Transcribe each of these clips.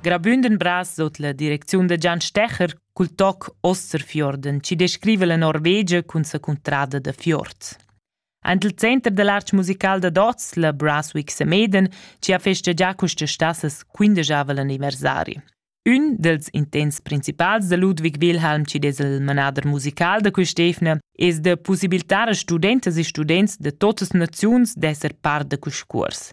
Grabünden bras sot la direcziun da Gian Stecher cul toc Osterfjorden, chi descriva la Norvegia cun sa cuntrada da fjord. Ant il center da l'arch musical da Dots, la Braswick Semeden, ci ha festeggià questa stassas quindegiava l'anniversari. Un dels intents principals da Ludwig Wilhelm ci des il manader musical da quest'efna es de possibiltar a studentas e students de totas naziuns d'esser part da quest curs.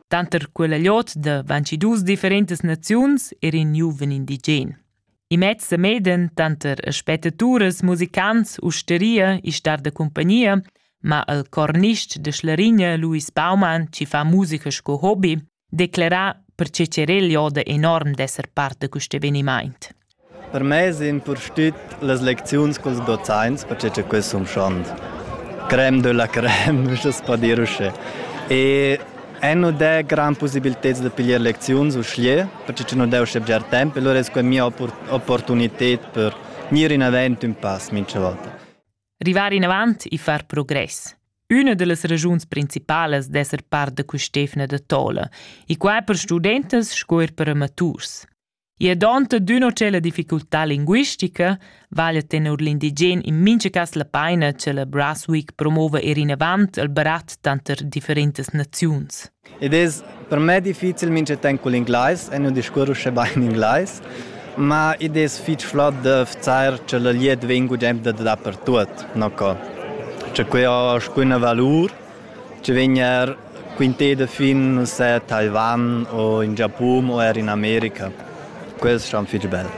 Tanter quella lot da 22 differentas naziuns er in giuven indigen. I mezz a meden tanter spettatures, musicants, usteria e star da compagnia, ma il cornist de Schlarigne Louis Baumann, ci fa musica sco hobby, declara perche cerel joda enorm d'esser parte a quest eveniment. Per mei es impustüt las lecziuns culs dozaints perche cha quels sun schand. Crème de la crème, uschess po dir uschè. E e nu dà grand pussibilteds da piglier lecziuns uschè, perche cha nu dà uschè bger temp e lura es quai mia opportunited per gnir inavant ün pass mincha volta. Rivar inavant e far progress. Üna da las ragiuns principalas d'esser part da quist'eivna da tola, e quai per studentas sco eir per amaturs. I è donta d'üna cella difficultà linguistica, vaglia tenor l'indigen in mincha cas la paina cha la Brasweek promova ir inavant al barat tanter differentas naziuns. Id es per me difficil mincha temp cul inglais e nu discurr uschè bain inglais, ma id es fich flot da vzar cha la glieud vegn gudem da dapertuot, no co. Cha que ho alcuna valur Tgei vegn er quintet da fin ussa a Taiwan o in Giapun o er in America? Quels stan fitg bel.